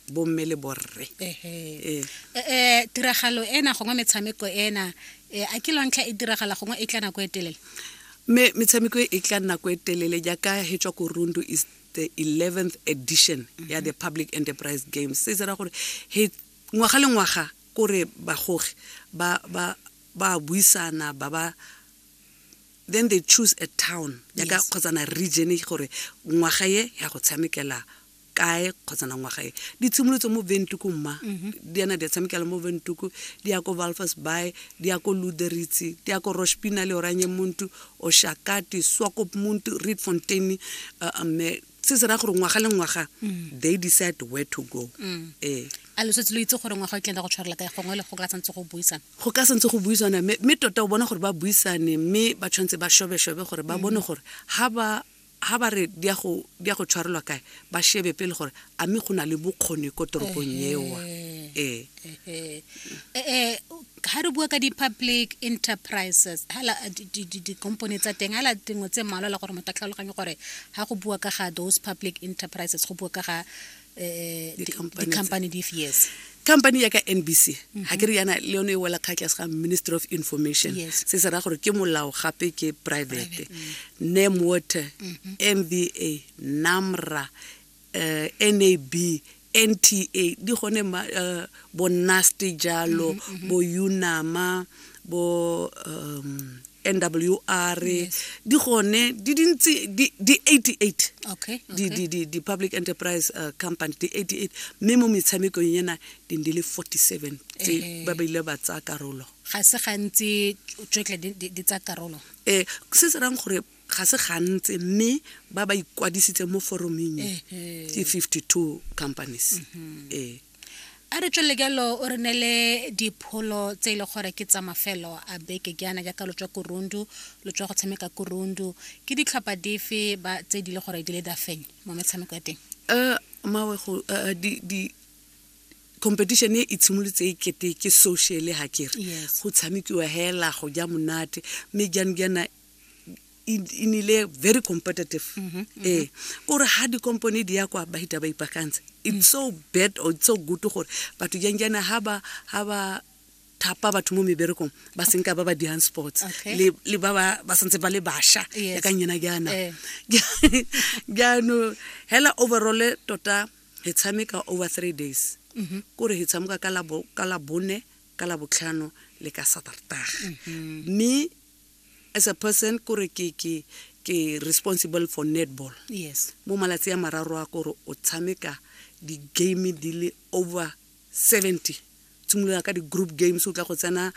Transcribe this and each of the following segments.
bomme le borre ee eh, tiragalo ena gongwe metshameko ena eh, a ke lontlha e diragala gongwe e tla nako e telele me metshameko e tla nako e telele jaaka he tswa ko rundu is the 11th edition ya the public enterprise games se tsera gore he ngwaga le ngwaga kore bagogi ba ba ba buisana ba ba then they choose a town jaaka kgotsana region gore ngwaga ye ya go tshamekela kae kgotsa na ngwaga e di tshimolotse mo ventuku mma mhm. di yana di a tshamekela mo ventuku di ya ko valfas bay di ya ko luderitsi di ya ko rospina le oranye muntu oshakati swakop muntu reed fontain uh, eh, eh, mme se se raya gore ngwaga le ngwaga mm. they decide where to go mm. ee a lo setse lo itse gore ngwaga o tlenda go tshwarela kae gongwe le go ka santse go buisana go ka santse go buisana mme tota o bona gore ba buisane mme ba tshwanetse ba shobeshobe gore ba mm. bone gore ga ba Ha ba re di a go, di a go tshwarelwa kae, ba shebe pele gore a mme go na le bokgoni ko toropong ewa. Ee. Ehe. Eh, eh, ha re bua ka di-public enterprises hala di- di- di- di-company tsa teng hala dingwe tse mmalwa le gore motho a tlhaloganye gore ha go bua ka ga those public enterprises go bua ka ga eh, di- Di-company tse. di-company dife yes company ya ka nbc ga ke re yana le yone e wela kga tlase ga ministry of information Yes. se se raya gore ke molao gape ke private nam water mba namra eh, nab nta di gone ma- eh, bo nasty jalo bo unama bo um, nwr di gone di dintsi di di 88 okay, di, okay. di, di, di public enterprise uh, company di 88 mme mo metshamekong ena di di le 47 tse Eh. ba ba ile ba tsaya karolo ga se gantsi tsotlhe di- di di tsa karolo ee se se rang gore ga se gantsi mme ba ba ikwadisitse mo foroming e ke 52 companies mhm. ee a re tswelele jalo o re ne le dipholo tse e le gore ke tsa mafelo a beke jaana jaaka lo tswa korundu lo tswa go tshameka korundu ke ditlhopha dife ba tse di le gore di le dafeng mo metshameko ya teng um mawe go eh, di competition e itshimolotse e kete ke sociale ga kere go tshamekiwa hela go ja monate mme jaanong jaana e e nile very competitive Mhm, ee o re ga dikompone di ya kwa ba hita ba ipaakantse it's so bad or it's so good gore batho jang jana ha ba ha ba thapa batho mo meberekong ba senka ba ba dirang sports Okay. le le ba ba ba santse ba le basha Yes. ya ka nyena jana Eh. jaanong hela overall tota re tshameka over three days Mhm. kore re tshameka ka labo- ka labone ka labotlhano le ka satartaga mme as a person kore ke ke ke responsible for netball yes mo malatsi a mararo a kore o tshameka di-game di le over 70 tshimolola ka di-group games o tla go tsena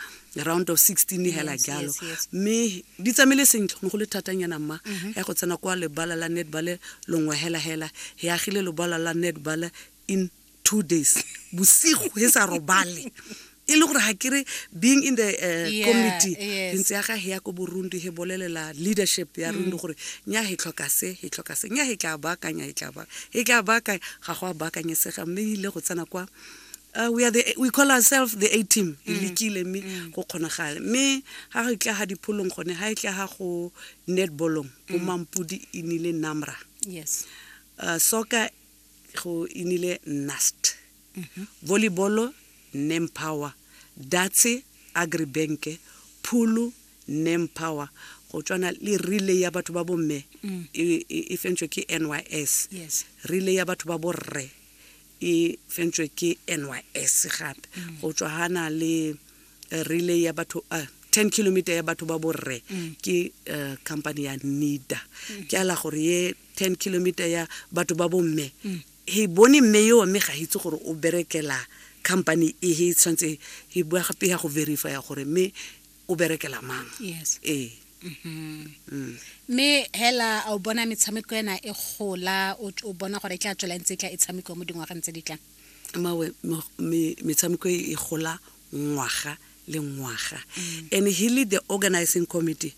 round of 16 yes, hela jalo mme di tsamaile sentle ne go le thatanyana mma mhm. ya go tsena kwa lebala la netball longwe hela hela e agile lebala la netball in two days bosigo he sa robale e le gore ga ke re being in the uh, Yeah, committee yes. ke ntse ya ga he ya ko borundi he bolelela leadership ya rundi gore nya he tlhoka se he tlhoka se nya he tla baakanya he tla baakanya he tla baakanya ga go a baakanyesega mme e ile go tsena kwa Uh, we, are the, we call ourselves the a team e lekile mme go kgonagale mme ga go tla ga dipholong gone ga e tla ga go netballong bo mampodi e nile namra yes uh, soccer go inile nast mhm. volleyball nempower datse agribanke phulu nempower go tswana le relay ya batho ba bomme mm. e, e, e fentswe ke nys relay ya batho ba borre e fentswe ke nys gape mm. go tswa gana le eh, relay ya batho uh, eh, 10 kilometer ya batho ba borre mm. ke uh, company ya nida ke ala gore ye ten kilometer ya batho ba bomme mm. he bone mme eo mme ga itse gore o berekela company e he tshwanetse he bua gape ya go verify ya gore mme o berekela mang yes. ee mm-hmm. mm. mme hela a o bona metshameko ena e gola o bona gore e tla tswela ntse e tla e tshameko mo dingwageng tse di tlang mawe metshameko e, e gola ngwaga le ngwaga mm. and he lead the organizing committee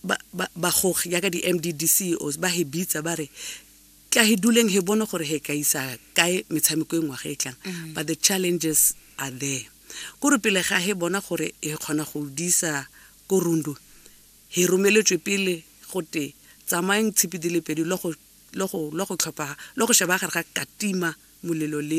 ba, ba, bagogi jaaka di-mddceos ba he bitsa ba re tla he duleng he bone gore he ka isa kae metshameko e ngwaga e tlang mm. but the challenges are there kore pele ga he bona gore he kgona go disa ko rundu he romeletswe pele gote tsamayeng tshipi di le pedi le go sheba gare ga katima molelo le